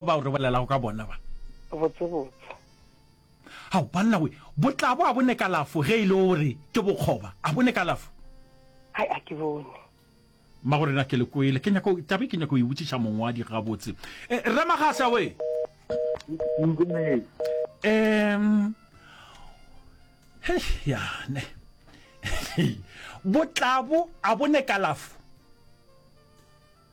Bao re bolelago ka bona ba. Botsebotse. Hao, banna we, bo tla bo a bone kalafo ge e le o re ke bokgoba. A bone kalafo? Hai, a ke bone. Magoreng a ke le kwele. Ke nyaka, taba e ke nyaka go e botšiša mongwadi gabotse. Eh, Rre Magasa we! Em, hei, ya, ne. Bo tla bo a bone kalafo?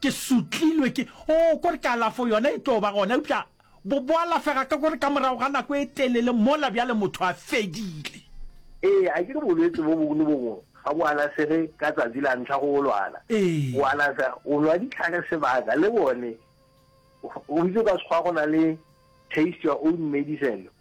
Ke sotlilwe ke, oo, kore kalafo yona e tlo ba gona, eupša bo, bo alafega ka kore ka morago ga nako e telele mola bjale motho a fedile. Ee, a ke re bolwetsi bo bongwe le bo bongwe ga bo alafege ka tsatsi la ntlha go bo lwala. Bo Ee. alafega o nwa dihlare sebaka le bone. O itse o ka sekgowa go na le taste your own medicine.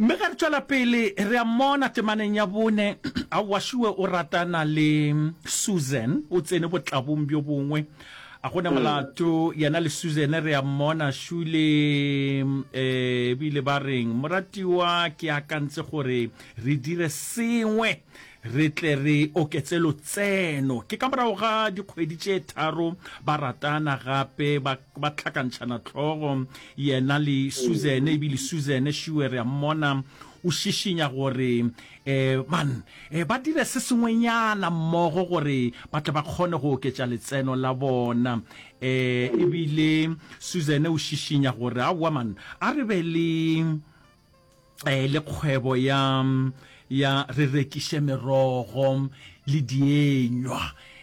Mme ge re tšwela pele, re a mmona temaneng ya bone, a wašiwe o ratana le Susan, o tsene botlabong bjo bongwe. A go na mm. molato yena le Susan re a mmona šule um eh, bile ba reng moratiwa ke akantse gore re dire sengwe re tle re oketse lotseno ke ka morago ga dikgwedi tše tharo ba ratana gape ba tlhakantšhana tlhogo Yena le Susan, e bile Susan, šiwe re a mmona, o šišinya gore e, man, e, ba dire se sengwenyana mmogo gore ba tle ba kgone go oketša letseno la bona. E, e bile Susan o šišinya gore, aowa man, a re be le. eh, le kgwebo ya ya re rekiše merogo le dienywa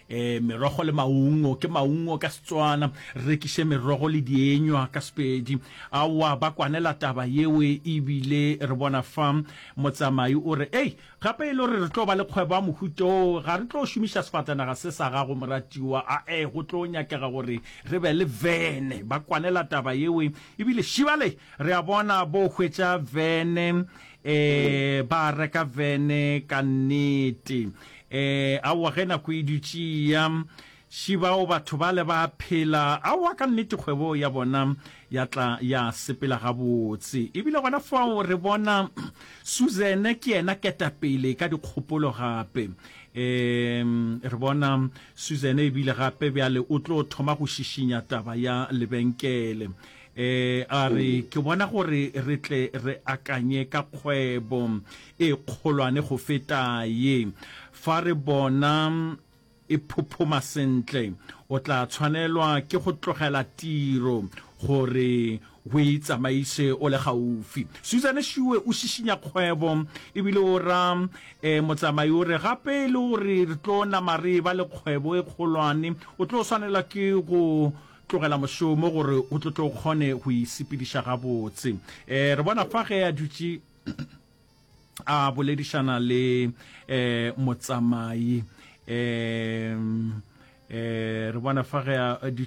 eh merogo le maungo ke maungo ka setswana rekiše merogo le dienywa ka sepedi aowa ba kwanela taba yeo ebile re bona fa motsamai o re ei gape e le gore re tlo ba le kgwebo ya mohuto ga re tlo šomiša sefatanaga se sa gago moratiwa a e go tlo nyakega gore re be le vene ba kwanela taba yeo ebile šibale Re a bona bo hwetša vene. Eeh ba reka vene ka nnete. Eeh aowa ge nako e dutše e ya. Shi bao batho bale ba a phela. Aowa ka nnete kgwebo ya bona ya tla ya sepela gabotse. Ebile gona fao re bona Susan ke yena ketapele ka dikgopolo gape. Eeh re bona Susan ebile gape bjale o tlo thoma go šišinya taba ya lebenkele. e a re ke bona gore re tle re akanye ka kgwebo e kgolwane go feta ye fa re bona e phophoma sentle o tla tshwanelwa ke go tlogela tiro gore o e tsamaise o le gaufi susan shiwe o šišinya kgwebo ebile o ra um motsamai o re gape e le gore re tlo nama re ba le kgwebo e kgolwane o tlo swanela ke go tlogela mošomo gore o tlo tle o kgone go isepediša gabotse. E, re bona fa ge a dutše a boledišana le e, motsamai e, e, re bona fa ge a dutše